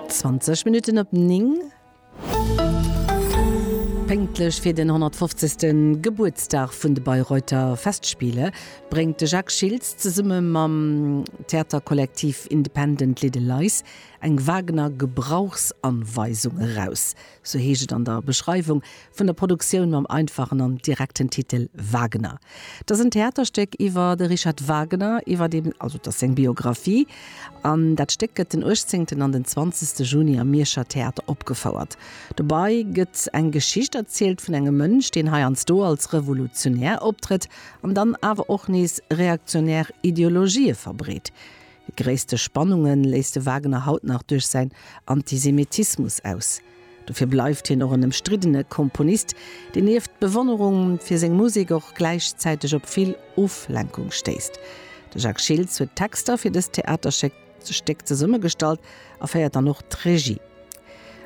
20 Minutten op 9. Pénktlech fir den 150. Gebuertsdag vun de Bayreuther Festspiele bréngt de Jacques Schiltz zesumme mam Theaterkollektiv Independent Little Lies eng Wagner-Gebrauchsanweisung eraus. sou heescht et an der Beschreiwung vun der Produktioun mam einfachen an direkten Titel Wagner. Et ass en Theaterstéck iwwer de Richard Wagner, iwwer dee, also et ass seng Biographie, an dat Stéck gëtt den uechtzéngten an den zwanzegste Juni am Mierscher Theater opgefouert. Dobei gëtt eng Geschicht erzielt vun engem Mënsch, deen heiansdo als Revolutionär optrëtt an dann awer och nees reaktionär Ideologië verbreet. Déi gréisste Spannunge léisst de Wagner haut nach duerch säin Antisemitismus aus. Dofir bleift hien och en ëmstriddene Komponist, deen nieft Bewonnerung fir seng Musek och gläichzäiteg op vill Oflenkung stéisst. De Jacques Schiltz huet d'Texter fir dëst Theaterstéck zesummegestallt a féiert dann och d'Regie.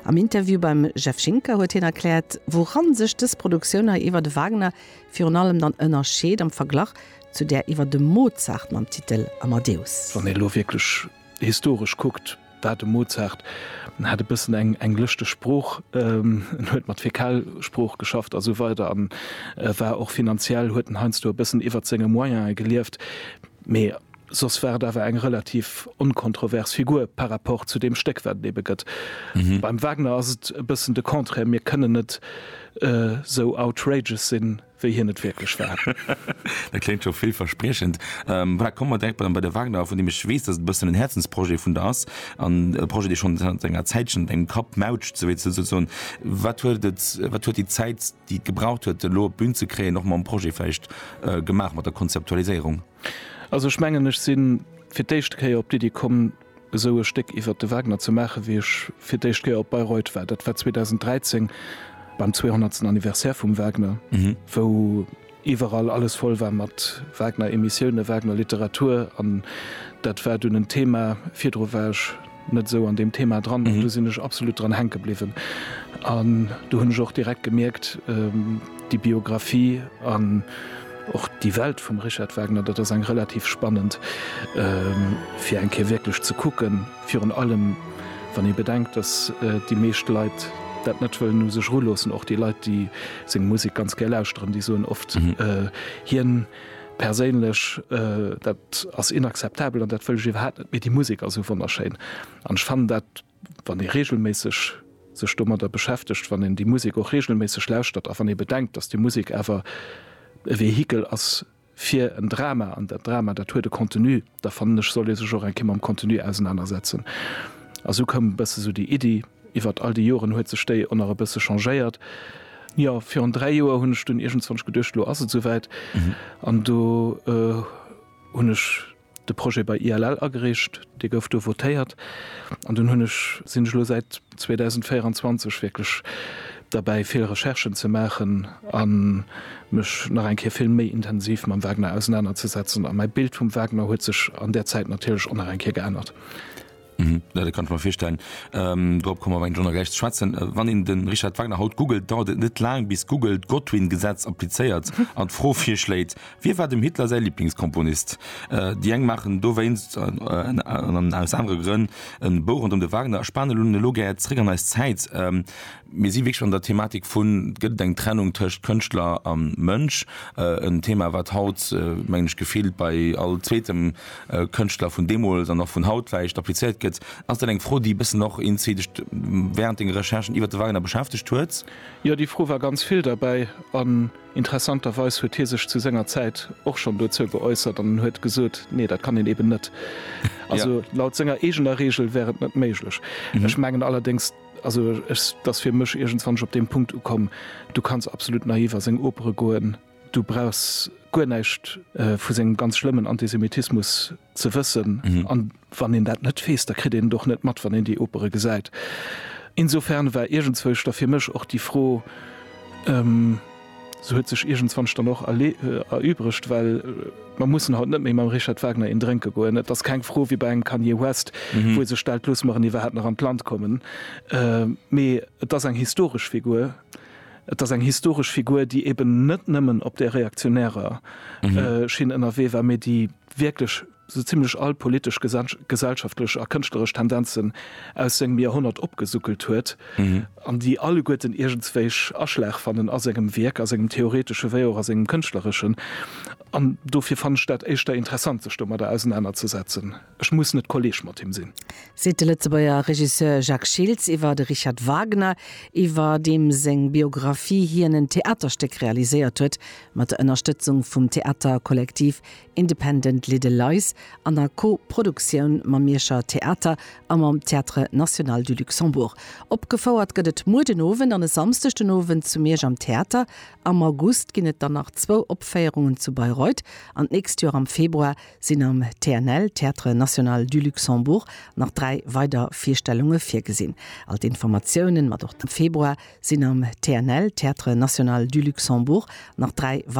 Am Interview beim Jeff Schinker huet hien erkläert, wouran sech dës Produktioun hei iwwer de Wagner virun allem dann ënnerscheet am Verglach zu där iwwer dem Mozart mam Titel Amadeus. Wann ee lo wierklech historesch kuckt, war de Mozart, en hat e bëssen eng eng lëschteg Sprooch, en huet mat Fäkalsprooch geschafft a sou weider an e war och finanziell, huet en heiansdo e bëssen iwwert senge Moyen'e gelieft, mee soss war et awer eng relativ onkontrovers Figur par rapport zu deem Stéck, wat et ebe gëtt. Beim Wagner ass et e bëssen de Contraire, mir kënnen net sou outrageous sinn. wéi hien et wierklech war. Dat kléngt scho villverspriechend. Voilà, komme mer direkt bei de Wagner, vun deem ech weess, dass et e bëssen en Häerzensprojet vun der ass an e Projet, dee schonn zanter enger Zäitchen op engem Kapp mautscht, sou wéi ze soen. Wat huet et, wat huet déi Zäit, déi et gebraucht huet, elo op d'Bün ze kréien, och mam Projet vläicht, gemaach mat der Konzeptualiséierung? Also ech mengen, ech si fir d'éischte Kéier op d'Iddi komm, esou e Stéck iwwert de Wagner ze maachen, wéi ech fir d'éischt Kéier op Bayreuth war. Dat war 2013 beim 200. Anniversaire vum Wagner, wou iwwerall alles voll war mat Wagner-Emissiounen, Wagner-Literatur. An dat war dunn en Thema. Virdru war ech net esou an deem Thema dran, an do sinn ech absolut dran hänke bliwwen. An do hunn ech och direkt gemierkt, déi Biographie an Och déi Welt vum Richard Wagner, dat ass eng relativ spannend fir eng Kéier wierklech ze kucken, virun allem wann ee bedenkt, datt déi meescht Leit dat net wëllen u sech eruloossen. Och déi Leit, déi seng Musek ganz gär lauschteren, déi soen oft, hien perséinlech, dat ass inakzeptabel an dat wëll ech iwwerhaapt net, mee déi Musek ass esou wonnerschéin. An ech fannen dat Wann ee reegelméisseg sech domadder beschäftegt, wann een déi Musek och reegelméisseg lauschtert a wann ee bedenkt, datt déi Musek awer e Vehikel ass fir en Drama, an dat Drama, dat huet e Contenu, da fannen ech, soll ee sech och eng Kéier mam Contenu ausenanersetzen. A sou koum e bësse sou déi Iddi. Iwwert all déi Joren huet sech déi och nach e bësse changéiert. Jo, virun dräi Joer hunn ech dunn iergendzwann geduecht, elo ass et souwäit, an do hunn ech, de Projet bei ILL agereecht, dee gouf do votéiert an dunn hunn ech, sinn ech elo säit 2024 wierklech derbäi vill Recherchen ze maachen a mech nach eng Kéier vill méi intensiv mam Wagner ausenanerzesetzen a mäi Bild vum Wagner huet sech an där Zäit natierlech och nach eng Kéier geännert. Mhm, ja, dat kann ech mer virstellen. Ähm, drop kommen wir eng Journal gleich zu schwätzen. Äh, Wann een den Richard Wagner haut googelt, dauert et net lang, bis Google d'Godwin-Gesetz applizéiert an d'Fro virschléit, Wie war dem Hitler säi Lieblingskomponist? Äh, Déi eng maachen dowéinst, äh, an an aus anere Grënn, en Bou rondëm de Wagner a spanen un elo gär zréck an eis Zäit. Ähm, Mir si wierklech an der Thematik vun, gëtt et eng Trennung tëscht Kënschtler a Mënsch? En Thema, wat haut, mengen ech, gefillt bei all zweetem Kënschtler vun deemools an och vun haut vläicht applizéiert gëtt. Ass dat eng Fro, déi e bëssen och inzit, dech wärend denger Recherchen iwwer de Wagner beschäftegt huet? Jo, déi Fro war ganz vill derbäi. An interessanterweis huet hie sech zu senger Zäit och schonn dozou geäussert an en huet gesot, Nee, dat kann een eeben net. Also laut senger eegener Reegel wär et net méiglech. Ech mengen allerdéngs, Also ech, t'ass fir mech iergendswann op deem Punkt ukomm, du kanns absolut naiv a seng Opere goen, du brauchs guer näischt vu sengem ganz schlëmmen Antisemitismus ze wëssen, a wann een dat net weess, da kritt een et och net mat, wann een déi Opere gesäit. Insofern war iergendzwousch da fir mech och déi Fro, Se huet sech iergendzwanch dann och erübregt, well mer mussen haut net méi mam Richard Wagner een drénke goen. Et ass keng Fro wéi bei engem Kanye West, wou ee sech stellt, Loosse mer en iwwerhaapt nach an d'Land kommen? Mee et ass eng historesch Figur. Et ass eng historesch Figur, déi eben net nëmmen op där reaktionärer Schinn ënnerwee war, mee déi wierklech sou zimlech all politesch, gesellschaftlech a kënschtleresch Tendenzen aus sengem Joerhonnert opgesuckelt huet, an déi alleguerten iergendswéich Aschlag fannen a sengem Wierk, a sengem theoretesche wéi och a sengem kënschtlereschen. An dofir fannen ech dat éischter interessant, sech domadder ausenanerzesetzen. Ech muss net Kolleeg mat him sinn. Seet de Lëtzebuerger Regisseur Jacques Schiltz iwwer de Richard Wagner, iwwer deem seng Biographie hien en Theaterstéck realiséiert huet, mat der Ënnerstëtzung vum Theaterkollektiv Independent Little Lies an a Co-Produktioun mam Mierscher Theater a mam Théâtre National du Luxembourg. Opgefouert gëtt et muer den Owend an e Samsdeg den Owend zu Miersch am Theater. Am August ginn et dann nach zwou Opféierungen zu Bayreuth an d'nächst Joer am Februar sinn am TNL, Théâtre National du Luxembourg, nach dräi weider Virstellunge virgesinn. All d'Informatiounen, mat och dem Februar sinn am TNL, Théâtre National du Luxembourg, nach dräi weider.